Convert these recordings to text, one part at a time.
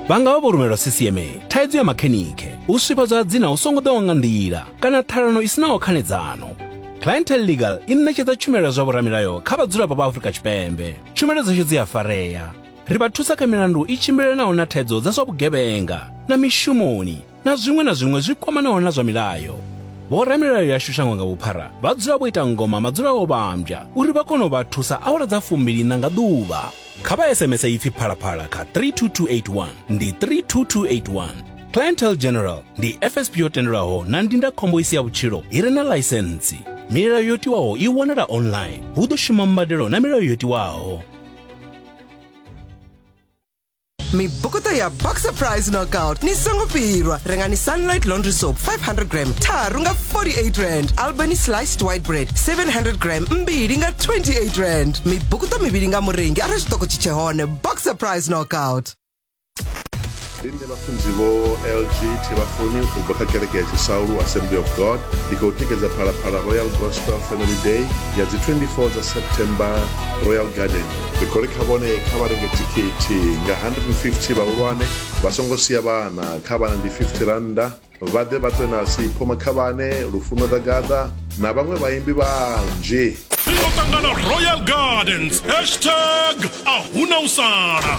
vha nga vha vho rumelwa ccma thaidzo ya makhenikhe u swifhadzwa ha dzina hu songo ḓaho nga nḓila kana ṱhalano i sinaho khanedzano clientele legal i ṋetshedza tshumelo ya zwa vhoramilayo kha vhadzulapo vha afurika tshipembe tshumelo dzashu dzi a farea ri vha thusa kha milandu i tshimbilelanaho na thaidzo dza zwa vhugevhenga na mishumoni na zwiṅwe na zwiṅwe zwi kwamanaho na zwa milayo. Vhoramilayo yashu shango nga vhuphara vha dzula vho ita ngoma madzula o vhambya uri vha kone u vha thusa awara dza fumbiliṋa nga ḓuvha. Kha vha SMS ipfi phalaphala kha 32281 ndi 32281. Clientele General ndi FSP yo tendelwaho na ndindakhombo i si ya vhutshilo i re na ḽaisentsi. Milayo yo tiwaho i wanala online. Hu ḓo shuma mbadelo na milayo yo tiwaho. mibukuta ya boxer price knockout ni songo pirwa rengani sunlight laundry soap 500 gram tharu nga 48 rand albany sliced white bread 700 gram mbili nga 28 rand mibukuta mivhili nga murengi arali tshiṱoko tshi tshe hone boxer price knockout ndi nṋe vhafunzi vho lg thivhafuni u bva kha kereke ya tshisaulu assembly of god ndi khou tikedza phalaphala royal gospel family day ya dzi 24 dza september royal garden ri khou ri kha vhone kha vha renge thikhithi nga 150 vhahulwane vha songo sia vhana kha vhana ndi 50 rannda vha ḓe vha ṱwe nasi phomakhavhane lufuno ḓa gaḓa na vhaṅwe vhaimbi vhanzhi ri ḓo ṱangana royal gardens hashtag a huna u sala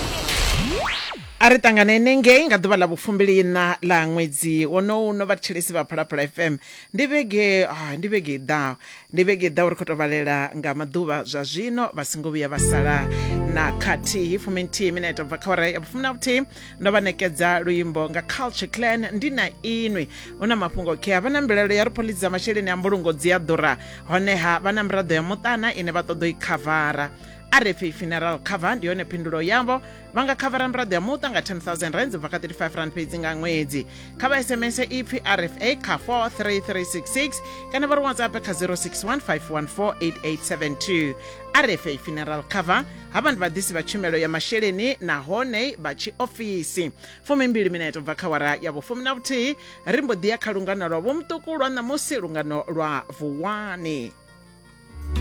a ri ṱanganene ngei nga ḓuvha ḽa vhufumbiliina ḽa ṅwedzi wonowu no vhathetshelesi vha phalaphala fm ndi vhege ah, ndi vhege i ḓaho Ndi vhege i ḓaho ri khou tou vhalela nga maḓuvha zwa zwino vha singo vhuya vha sala na khathihi fumi nthihi minete bva kha ora ya vhufumi na vhuthihi ndo vha ṋekedza luimbo nga culture clan ndi na inwi hu na mafhungo khe vha na mbilaelo ya ri phoḽisi dza masheleni a mbulungo dzi a ḓura honeha vha na miraḓo ya muṱana ine vha ṱoḓa i khavara a re pfi funeral cover ndi yone phindulo yavho vha nga khavara miraḓo ya muṱa nga 10000 rands bva kha 35 rand fhedzi nga ṅwedzi kha vha sms ipfi rfa kha 43366 kana vha ri whatsapp kha 0615148872 rfa funeral cover ha vha ndi vhaḓisi vha tshumelo ya masheleni nahone vha tshiofisi fumimbili mineto bva kha wara ya vhufumi na vhuthihi ri mbo ḓi ya kha lungano lwa vhomuṱuku lwa ṋamusi lungano lwa vuwani